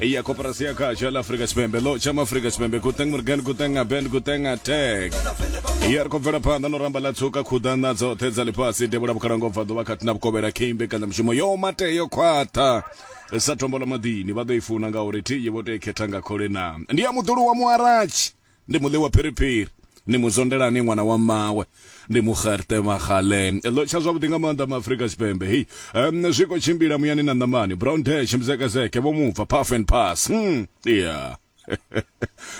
ya koporasi ya khatsho la afrika tshipembe ḽo tshama afrika tshipembe kuteng morgan kuteng aben kuteng atek ya ri khou bvela phanḓa no ramba ḽa tsuka khuḓana dzoṱhe dza ḽifhasi devhula vhukhalango bva ḓuvha khathihi na vhukovhela khe imbekanya mushumo yo mate yo khwaṱha sa tombola maḓini vha ḓo i funa ngauri thi ye vho tou i khetha nga khole na ndi ya muḓulu wa muaratshi Ndi mu ḽiwa phiriphiri. Ni mu zwondela ni ṅwana wa mmawe. Ndi mu xerte maxale. Ḽo tsha zwavhuḓi nga maanḓa ma Afrika Tshipembe hei. Em, zwi khou tshimbila muyani na ṋamani. Brown Dash, Mzekezeke, Vho Mubva, Puff and Pass. Hum, yeah.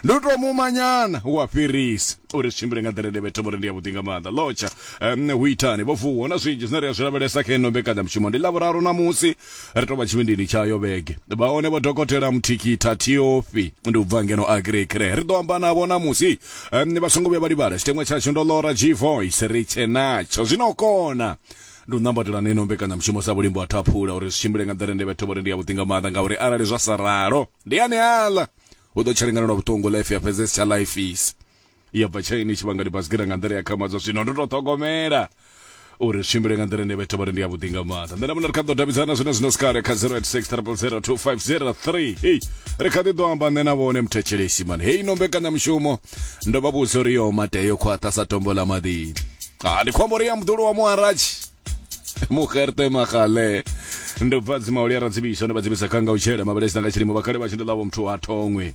Ndi u tou muma nyana wa fhirisa uri zwi tshimbile nga nḓila ine vhethe vhori ndi yavhuḓi nga maanḓa. Ḽo tsha, em, hu itani? Vho Vuwa, hu na zwinzhi zwine ri a zwi lavhelesa kha ino mbekanyamushumo. Ndi Ḽavhuraru ṋamusi. ri tovha tshivhindini tsha yo vhege vha hone vho dokotela muthikitha tiofi ndi u bva ngeno agrekre ri ḓo amba navho namusi um, vha songo vhuya vha livhala tshiteṅwa tshashu ndo lora g voice ri tshe natsho zwino u kona ndi u nambatela na ino mbekanyamushumo sa vhulimbo ha thaphula uri zwi tshimbile nga nḓila ine vhetho vhori ndi ya vhuḓi nga maanḓa ngauri arali zwa sa ralo ndi ane aḽa u ḓo tsha lingana lwa vhuṱungu life ya fhedzesi tsha life isi ya bva tshaini tshi vhanga libasigira nga nḓila ya khamadzwa zwino ndo to ṱhogomela uri zwi tshimbile nga nḓila ine vhetha vhori ndi ya vhuḓi nga maanḓa nṋe na muṋe ri kha ḓo davhidzana zwine zwino sikale kha 0860002503 hei ri kha ḓi ḓo amba nṋe na vhone muthetshelesi mani hei no mbekanyamushumo ndo vha vhudza uri yo matea yo khwaṱha sa tombo ḽa maḓini a ndi khombo ri ya muḓulu wa muharatshi muherte magale ndo bva dzimauli a radzivisa ndo vha dzivisa kha nga u tshela mabelesina nga tshilimo vhakhale vha tshi ndo ḽavho muthu ha thongwe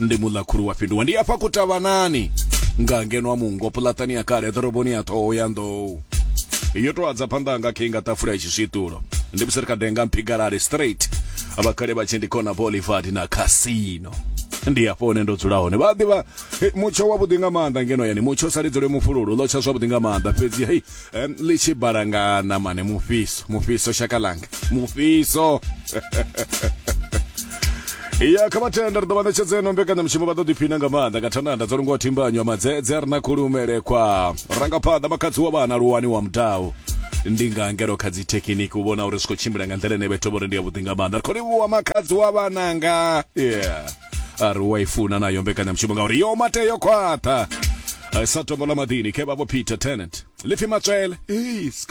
ndi muḽakhulu wa fhinduwa ndi afha kutavhanani nga ngeno wa mungo puḽatani ya kale ḓoroboni ya ṱhoho ya nḓou yo tou adza phanḓa nga khe nga ṱafula ya tshiswiṱulo ndi musi ri kha denga mphigalale straight vhakhale vha tshi ndi khona bolivard na casino ndi afho hone ndo dzula hone vha ḓivha mutsho wavhuḓi nga maanḓa ngeno yani mutsho sa lidzole mufhululu ḽo tsha zwavhuḓi nga maanḓa fhedzi hei um, ḽi tshi balanga ṋamane mufhiso mufhiso shaka langa mufhiso ya kha vhatenda ri ḓo vha ṋetshedza eno mbekanyamushumo vha ḓo ḓiphina nga maanḓa nga thananda dzo lungwa thimbanyo ya madzedze ri na khulumelekwa rangaphanḓa makhadzi wa vhana luwani wa mudau ndi nga ngelo kha dzi thekiniki u vhona uri zwi khou tshimbila nga nḓila ine vhethu vho ri ndi yavhuḓi nga maanḓa ri khou livhuwa makhadzi wa vhananga yeah a ri u a i funa nayo mbekanyamushumo ngauri yo mate yo khwaṱha Eh, sa tombo ḽa maḓini khe vha vho peter tenant lipfi matswele Eish,